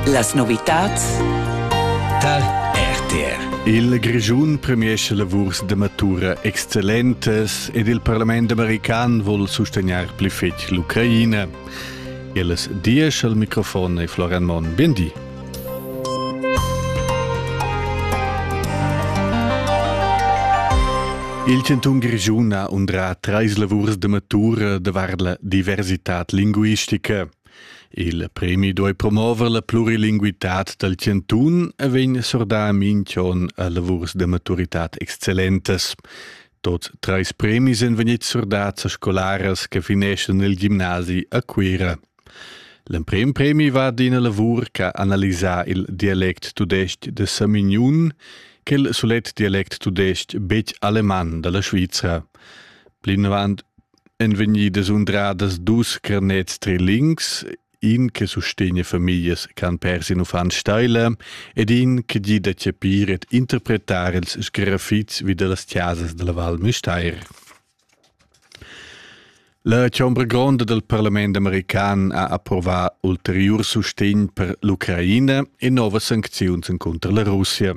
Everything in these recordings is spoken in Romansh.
Las novitads tar RTR. Il Grischun premiescha lavurs da matura excellentas ed il parlament american vul sustegnar pli fetg l'Ucraina. Ellas diesch al microfon e Floran Mon. Bien di. Il chantun Grischun ha undrà trais lavurs da matura davart la diversitad linguistica. Il premi duai promover la plurilinguitad dal chantun e vegn sordà minch'on a lavurs da maturitad excellentas. Tot trais premis èn vegnids sordats a scolaras che fineschan il gimnasi a Cuira. L'emprim premi va ad ina lavur che ha analisà il dialect tudestg de Samignun, quel sulet dialect tudestg betg aleman dalla Svizra. Plinavant èn vegnidas undradas dus carnets trilings, in che sustegna famiglias ch'han pers in uffant steila ed in che gida a capir ed interpretar ils sgrafits vi dallas chasas dalla Val Müstair. La chombra gronda dal parlament american ha approvà ulteriur sustegn per l'Ucraina e novas sancziuns encunter la Russia.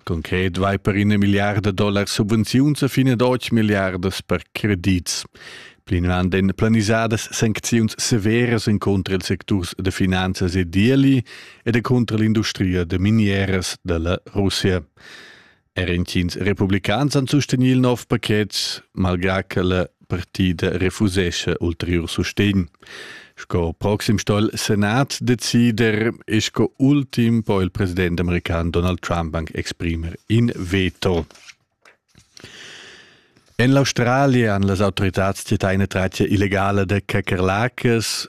Concret vai per ina milliarda dollar subvenziuns a fin ad otg milliardas per credits. Plinavant èn planisadas sancziuns severas encunter ils secturs da finanzas e d'ieli ed encunter l'industria da minieras da la Russia. Er intgins republicans han sustegnì il nov paket, malgrà che la partida refusescha ulteriur sustegn. Sco proxim sto il Senat decider e sco ultim po il president american Donald Trump anche exprimer in veto. En l'Australia han las autoritats titaine tratia illegale de Kakerlakas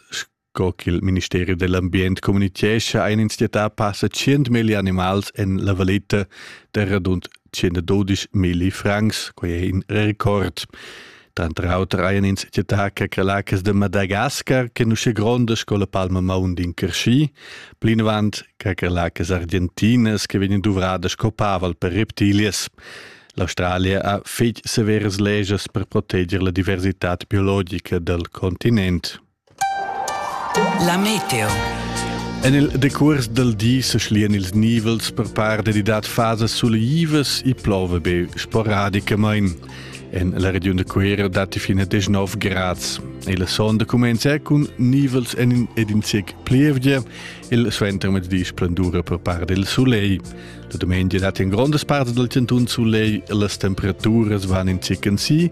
Co ch'il ministeri dell'ambient communitgescha ein ins dieta passa tschient milli animals en la valeta der rund 112 milli francs, quei è in record. Tranter auter ein ins dieta che crelacas de Madagascar che nusce gronda sco la palma maun din Cresci, plinavant che crelacas argentinas che vegnan duvrada sco paval per reptilias. L'Australia ha fetg severas legias per proteger la diversità biologica del continent. La meteo. En il decurs dal di se schlian ils nivels per par dedidat fasas suleivas e plova be sporadicamain. En la regiun de Cuera datti fino a 19 grads. E la sonda comincia con nivels en ed in sec plievgia. Il suentermezdi splendura per par del soleil. La domenica datti in grondas parts del centun soleil e las temperaturas van in sec en si.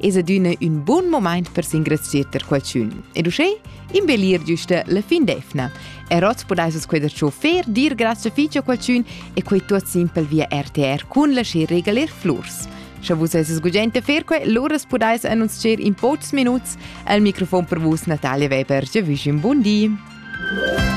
es adüna ün bun momaint per s'ingrazchir per qualchün. Ed uschè imbellir güsta la fin d'efna. E hoz pudais vus quai da chauffeur dir grazie fich a qualchün e quai tuot simpel via RTR cun lascher regaler flurs. Sche vus eis sgugent a fer quai, lura pudais annunzier in pocs minuts al microfon per vus Natalia Weber. Je wünsche un buon di!